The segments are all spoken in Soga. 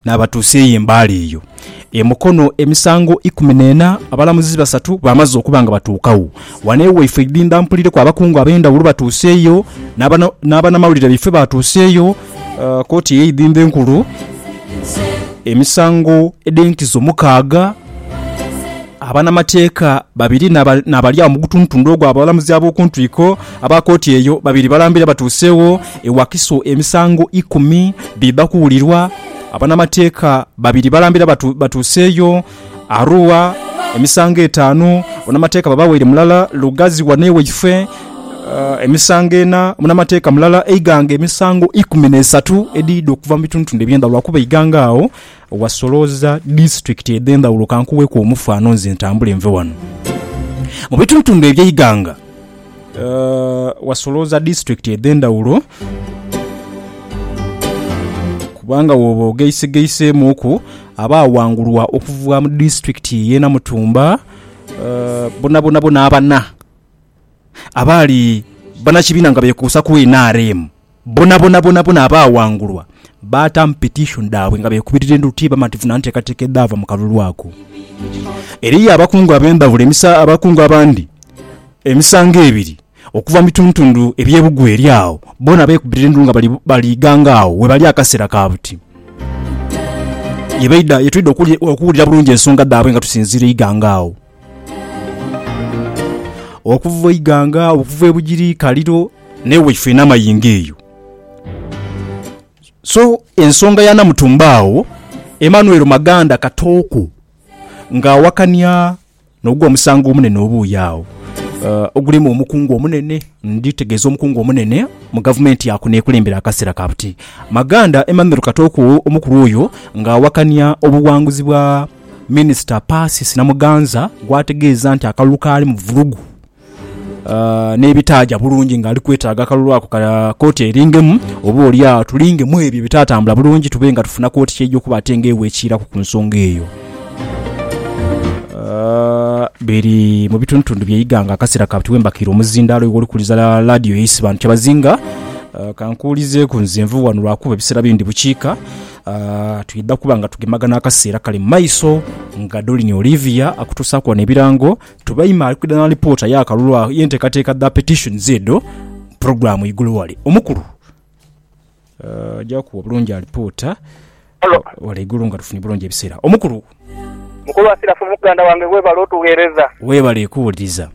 Naabatuusa eyo embaale eyo e Mukono emisango ikumi n'ena abalamuzi basatu baamaze okuba nga batuukagho. Wano ewaifwe Idhindha mpulireku abakungu ab'endhawulo batuuse eyo, n'abanamawulire baifwe baatuusa eyo. Kooti eye Idhindha enkulu emisango edh'enkizo mukaaga, abanamateeka babiri n'abali agho mu gutundutundu ogw'abalamuzi ab'okuntwiko. Aba kooti eyo babiri balambira batuuseegho e Wakiso emisango ikumi biidha kuwulirwa. Abanamateeka babiri balambira batuuseeyo Arua emisango etaanu, munamateeka babaweire mulala Lugazi wano ewaife emisango ena, munamateeka mulala e Iganga emisango ikumi n'esatu edhiidha okuva mu bitundutundu eby'endhawulo lwakuba e Iganga agho wasolooza disitulikiti edh'endhawulo. Ka nkuweeku omufano nze ntambule nve wano mu bitundutundu eby'e Iganga. Wasolooza disitulikiti edh'endhaghulo kubanga bw'oba ogeisegeisemuuku abaawangulwa okuva mu disitulikiti y'e Namutumba bonabonabona abana abaali banakibiina nga beekuusa ku nrm. Bonabona bonabona abaawangulwa baataamu petishoni dhaabwe nga beekubirira endulu tibamativu na nteekateeka edhaava mu kalulu ako. Eriyo abakungu ab'endhawulo emisa abakungu abandi emisango ebiri okuva mu bitundutundu eby'ebugwe eri agho, boona beekubirira endulu nga bali ghanga agho we bali akaseera ka buti. Ye baidha ye twidha okuwulira bulungi ensonga dhaabwe nga tusinziira eighanga agho. Okuva eighanga, okuva e Bugiri, Kaliro, n'ewe ife n'amayingo eyo. So ensonga ya Namutumba agho, Emmanuel Maganda Katooko nga awakania n'ogwo omusango omunene oba oyo agho ogulimu omukungu omunene, ndi tegeeza omukungu omunene mu gavumenti ya kuno ekulembere akaseera ka buti. Maganda Emmanuel Katooko omukulu oyo nga awakania obuwanguzi bwa. Minisita Persis Namuganza gwategeeza nti akalulu kaali mu vulugu n'ebitaaja bulungi ng'ali kwetaaga akalulu ako ka kkooti eringemu oba olyagho tulingemu ebyo ebitaatambula bulungi tube nga tufuna kkooti ky'eija okuba ate ng'ewa ekiiraku ku nsonga eyo. biri mu bitundutundu bye Iganga akaseera kati wembakira omuzindaalo iwe olikuliza laadiyo yaisi bantu kyabazinga kankuulizeeku nze nvuba wano lwakuba ebiseera bindi bukiika Ah, twidha kuba nga tugemagana akaseera kali mu maiso nga Dolini Olivia akutuusaaku wano ebirango. Tubaime ali kwidha na lipoota y'akalulu agho y'enteekateeka dha petitions edho mu pulogulaamu igulu wale. Omukulu, ah, aja kuwa bulungi alipoota Halo. wale igulu nga tufunye bulungi ebiseera. Omukulu, Mukulu Asirafu muganda wange webale otughereza. weebale kuwuliriza.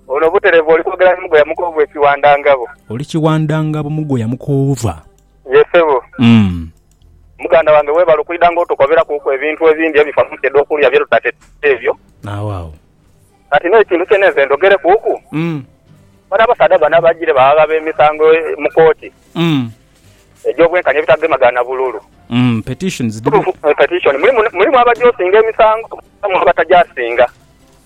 Ono butereevu oli kwogera ni Mugoya Mukovu e Kiwandangabo. Oli Kiwandangabo Mugoya Mukoova. Ye sebo. Mm. Muganda wange webale okwidha nga otukoberaku ku ebintu ebindhi ebifa mu nsi edhokulya bye tutateteire ebyo. Agho agho. Kati no ekintu kyene nze ndhogereku ku. Mm. Bano abasaadha bano abajire baghagha be misango mu kooti. Mm. Egyo bwenkanya ebitagemagana bululu. Mm petitions dhiriku. Petition mulimu mulimu abajosinga emisango mwabamu abatajaasinga.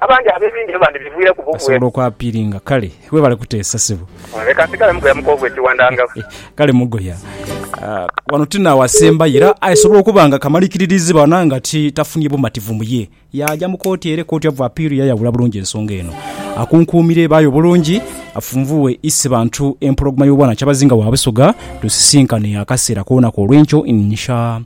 Abandi ab'ebindhi byo bandibivwireku bubwe. Asobola okwapiiringa. Kale, webale kuteesa, sebo. Leka nsigale mugoya mu koovu ekiwandangagho. Kale mugoya. Wano ti n'awasembayo, era asobola okuba nga kamalikiririzi bana nga ti tafunye bumativu mu ye. Yaaja mu kooti ere Court of Appeal yayawula bulungi ensonga eno. Akunkuumire baayo obulungi, afunvuwe ise bantu empologoma y'obwanakyabazinga wa Busoga, tusisinkane akaseera koona k'olwenkyo, insha